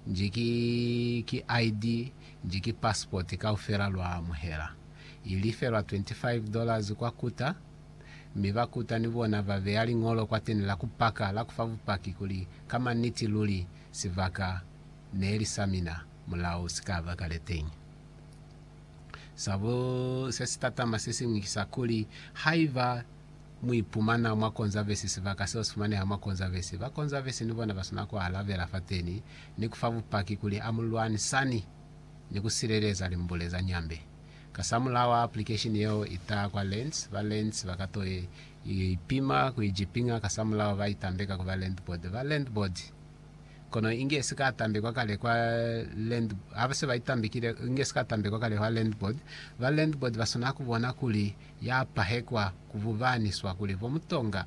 nji ki ki ID nji ki passport kaufela lwa amuhela. I lifelwa 25 dollars kwa Kuta, mi ba Kuta ni bona ba beya liñolo kwateni la ku paka la ku fa bupaki kuli ka maniti luli sibaka neli sa mina mulao si ka ba kale teñi. Sa bu, se si tatama sesiñwi ki sa kuli, haiba. Mu ipumana mwa Konzavesi sibaka seo si fumaneha mwa Konzavesi. Ba Konzavesi ni bona ba swana ku alabela fateni ni ku fa bupaki kuli amu lwanisani ni ku sileleza limbule za Nyambe. Kasamulaho ha aplikesheni yeo i taha kwa Lentz, ba Lentz ba ka to ipima ku i jipiña kasamulaho ba i tambeka ku ba Landboard. Ba Landboard kono inge si ka tambekwa kale kwa Landboard. Ha ba se ba i tambekile, inge si ka tambekwa kale kwa Landboard. Ba Landboard ba swana ku bona kuli ya pahekwa ku bubaniswa kuli bo Mutonga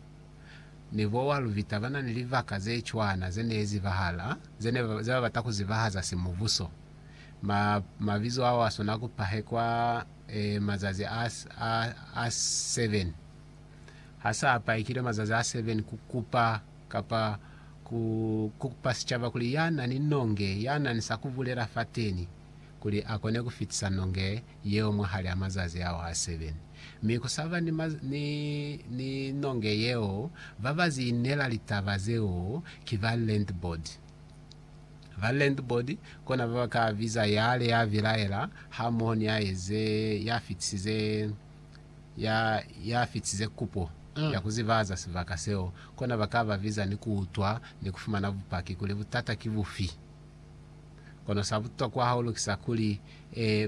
ni bo wa Lubita ba na ni libaka ze cwana ze ne zibahala, ze ne ze ba bata ku zibahaza simubuso. Ma, mabizo ao a swanela ku pahekwa e, mazazi a, a, a seven. Ha sa pahekilwe mazazi a seven, ku kupa, kapa ku, ku kupa sicaba kuli ya na ni nonge, ya na ni sa ku bulela fateni, kuli a kone ku fitisa nonge yeo mwahali a mazazi ao a seven. Mi ku sa ba ni, ni, ni nonge yeo, ba ba ziinela litaba zeo ki ba landboard. Ba landboard kona ba ba ka biza yale ya bilaela hamoho ni ya eze, ya fitisize, ya, ya fitisize kupo ya ku zibaza sibaka seo, kona ba ka ba biza ni ku utwa ni ku fumana bupaki kuli butata ki bufi. Kono sa butokwa hahulu ki sa kuli,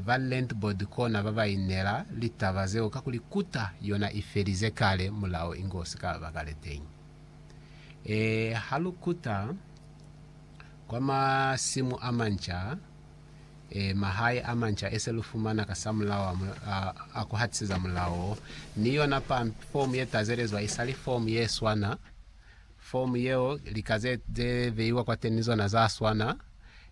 ba Lent Board kona ba ba inela litaba zeo kakuli kuta yona i felize kale, mulao inge u si ka ba kale teñi. Ha lu kuta kwa masimu a manca, mahae a manca e se lu fumana kasamulaho a ku hatiseza mulao wo, ni yona fomu ye tazelezwa i sa li fomu ye swana. Fomu yeo lika ze ze veiwa kwateni ni zona za swana,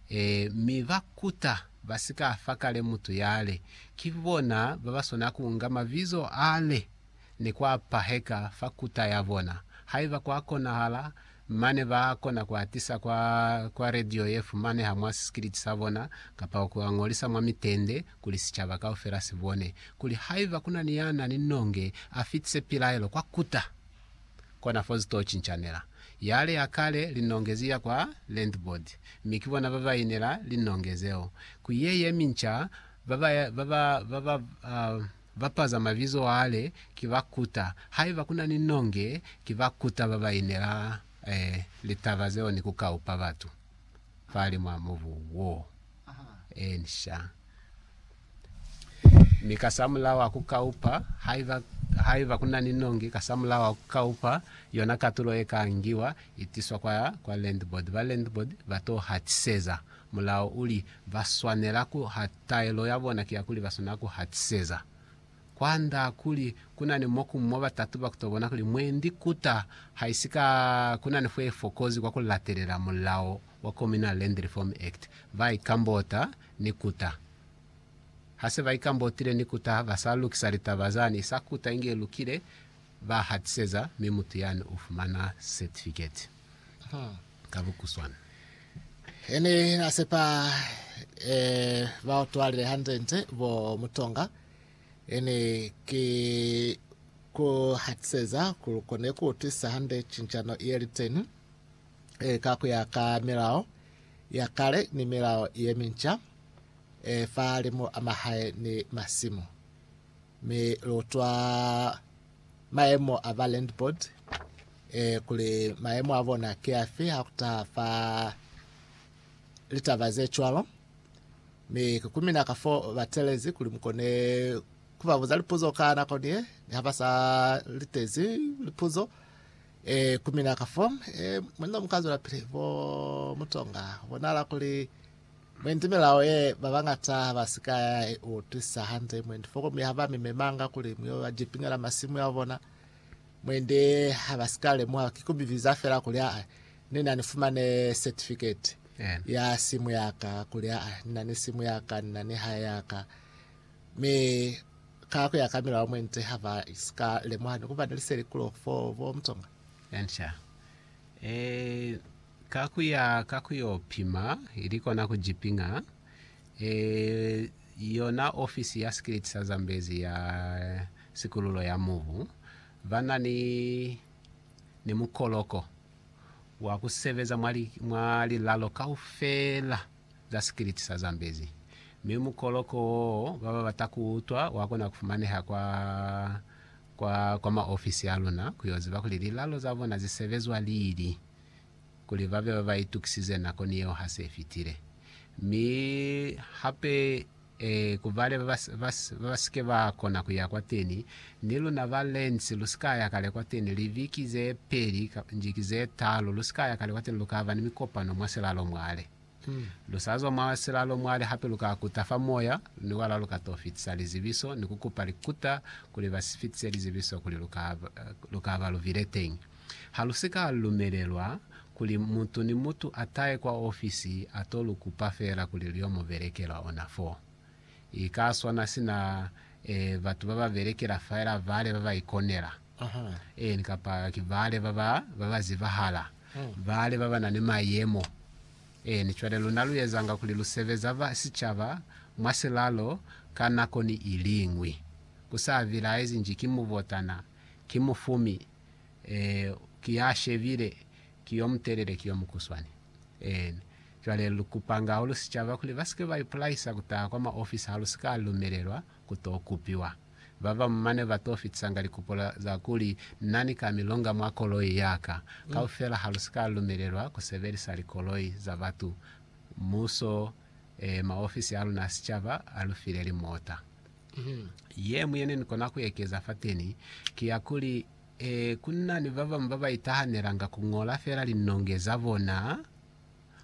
e, mi ba kuta ba si ka fa kale mutu yale. Ki bona ba ba swana ku nga mabizo ale ni ku a paheka fa kuta ya bona. Haiba kwa konahala, mane ba kona ku a tisa kwa, kwa radio ye fumaneha mwa sisikiliti sa bona, kapa ku a ñolisa mwa mitende, kuli sicaba kaufela si bone. Kuli haiba ku na ni ya na ni nonge, a fitise pilaelo kwa kuta kona fo zi to cincanela. Yale ya kale linongezi ya kwa Lentbod, mi ki bona ba ba inela linonge zeo. Ku ye ye minca, ba ba, ba ba, ba ba, uh, bapaza mabizo yale ki ba kuta. Haiba ku na ni nonge, ki ba kuta ba ba inela, eh, litaba zeo ni ku kaupa batu fahalimu a mubu wo. Eh, nxa. mi kasamulaho ha ku kaupa, haiba, haiba ku na ni nongi kasamulaho ha ku kaupa, yona katulo ye ka ngiwa itiswa kwa, kwa landboard. Ba landboard ba to hatiseza. Mulao uli, ba swanela ku ha, taelo ya bona ki ya kuli ba swanela ku hatiseza. Kwa nda kuli ku na ni moku mo ba tatuba ku to bona kuli mwendi kuta haisika ku na ni fo ye fokozi kwa ku latelela mulao wa Communal Land Reform Act, ba ikambota ni kuta. Ha se ba ikambotile ni kuta ha ba sa lukisa litaba zani, sa kuta inge i lukile, ba hatiseza, mi mutu yani u fumana setifiketi ka bukuswana. He ne na sepa ba utwalile hande-nde bo Mutonga, he ne ki ku hatiseza kuli kone ku utwisisa hande cincano ye li teni. e, ka ku ya ka milao ya kale ni milao ye minca, e, fa limu a mahae ni masimu. Mi lu utwa mayemo a ba land board, e, kuli mayemo a bona ki afi ha ku taha fa litaba ze cwalo. Mi ki ku mina ka fo ba telezi kuli mu kone ku ba buza lipuzo ka nako ni ye, ni ha ba sa litezi lipuzo. E, ku mina ka fo, e, mwa nina mu ka zwela pili, bo mutonga, bonala kuli mwendi milao ye ba bañata ha ba si ka ya i utwisa hande, mwendi foko mi ha ba mi memanga kuli mu yo ba jipinela masimu ya bona, mwendi ha ba si ka lemuha, ki ku mi biza fela kuli aa, ni na ni fumane certificate Amen. ya simu ya ka, kuli aa, ni na ni simu ya ka, ni na ni hae ya ka. Mi ka kuya ka milao mwente ha ba sika lemuha ni kuba ni liseli kulo fo bo mutonga. Ansha. E, ka kuya ka kuyo pima, ili kona ku jipinga. E, yona ofisi ya sikiliti sa Zambezi ya Sikululo ya Mubu ba na ni, ni mukoloko wa ku sebeza mwa li, mwa lilalo kaufela. za sikiliti sa Zambezi, mi mukoloko wo ba ba bata ku utwa wa kona ku fumaneha kwa kwa kwa maofisi a luna ku yo ziba kuli lilalo za bona zi sebezwa lili, kuli ba be ba ba itukisize nako ni yeo ha se fitile. Mi hape Ee, ku bale ba ba, ba, ba ba si ke ba kona ku ya kwateni. Ni luna ba Lentz, lu si ka ya kale kwateni, libiki ze peli, njiki ze talu, lu si ka ya kale kwateni, lu ka ba ni mikopano mwa silalo mwale. Lu sa zwa mwa silalo mwale hape, lu ka kuta fa moya, ni wala lu ka to fitisa lizibiso, ni ku kupa likuta kuli ba si fitise lizibiso kuli lu ka, lu ka ba lu bile teñi. Ha lu si ka lumelelwa kuli mutu ni mutu a tahe kwa ofisi a to lu kupa feela kuli lu yo mu belekela ona fo. I ka swana sina e, batu ba ba belekela feela bale ba ba ikonela, eeni, kapa ki bale ba ba, ba ba zibahala, bale ba ba na ni mayemo. Eeni, cwale luna lu ezanga kuli lu sebeza ba sicaba mwa silalo ka nako ni iliñwi, ku sa bilaezi nji ki mubotana, ki mufumi, Ee, ki ya shebile, ki yo mutelele, ki yo mukuswani. Een. Cwale lu kupanga hahulu sicaba kuli ba si ke ba ipulaisa ku taha kwa maofisi ha lu si ka lumelelwa ku to kupiwa. Ba bamu mane ba to fitisanga likupo za kuli, Na ni ka mi longa mwa koloi ya ka. Kaufela ha lu si ka lumelelwa ku sebelisa likoloi za batu. Muso, ee, maofisi a luna a sicaba a lu file limota. Ye muñwi yene ni kona ku ekeza fateni ki ya kuli, Ee, ku na ni ba bañwi ba ba itahanelanga ku ñola fela linonge za bona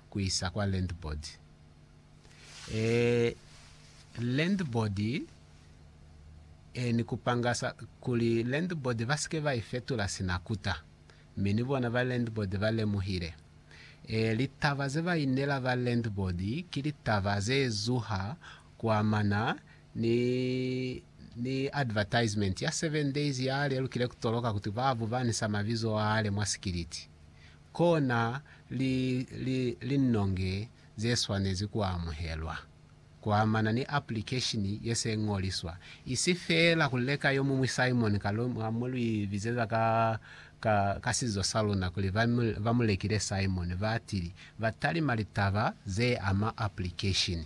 ku isa kwa landboard. Ee, landboard, ee, ni kupanga sa kuli landboard ba si ke ba i fetula sina kuta. Mi ni bona ba landboard ba lemuhile. Ee, litaba ze ba inela ba landboard ki litaba ze zuha kuamana ni ni advertisement ya seven days yale lukile kutoloka kuti ba bubanisa mabizo ale mwa sikiliti, kona li li linnonge ze swanezi kuamuhelwa kuamana ni application ye se ngoliswa, isi fela kuleka yomuñwi Simon Kaluma mo lu ibizeza ka ka ka sizo sa luna kuli ba ba mulekile Simon, batili batalima litaba ze ama application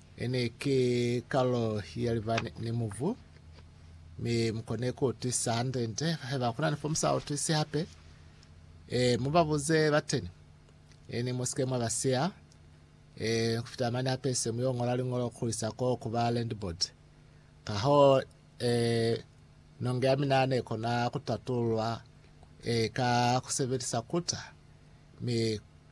Ene ki kalulo ya liba ni mubu, mi mu kone ku utisa hande-nde. Haiba kuna ni fo mu sa utisi hape, e, mu ba buze bateni. E, ni mu sike mwa ba siya. E, ni ku fita mane hape se mu yo ngola liñolo ku isa ko ku ba landboard. Kahoo, e, nonge ya mina ne kona ku tatulwa, e, ka ku sebelisa kuta, mi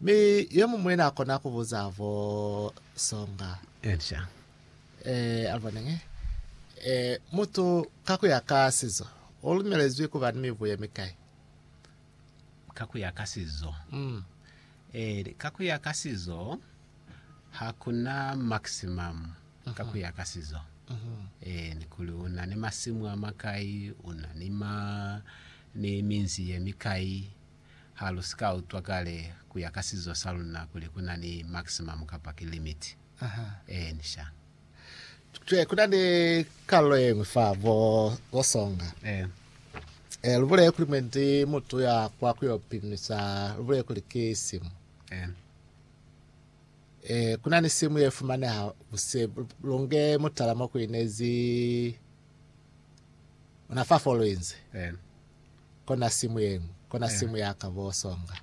Mi yomuñwi na kona ku buza vo songa. Elisha. Eh, alibonenge. Eh, mutu ka kuya ka sizo, o lumelezwi kuba ni mibu ye mikai? Ka kuya ka sizo. Mm. Eh, ka kuya ka sizo, ha kuna maximum ka kuya mm-hmm. ka sizo. Mm-hmm. Eh, ni kuli una ni masimu a makai, una ni ma, ni minzi ye mikai. Ha lu si ka utwa kale ku ya ka sizo sa luna kuli ku na ni maximum kapa ki limit. Ee, ni sha. Jwale ku na ni kalulo ye ñwi fa bo, bo songa. Ee. Lu bulele kuli mwendi mutu ya kwa ku yo pimisa, lu bulele kuli ki simu. Ee. Ee, ku na ni simu ye fumaneha buse, lu nge mutala mo ku inezi ona fa fo lu inzi. Ee. Kona simu yenu, kona simu yaka bo songa.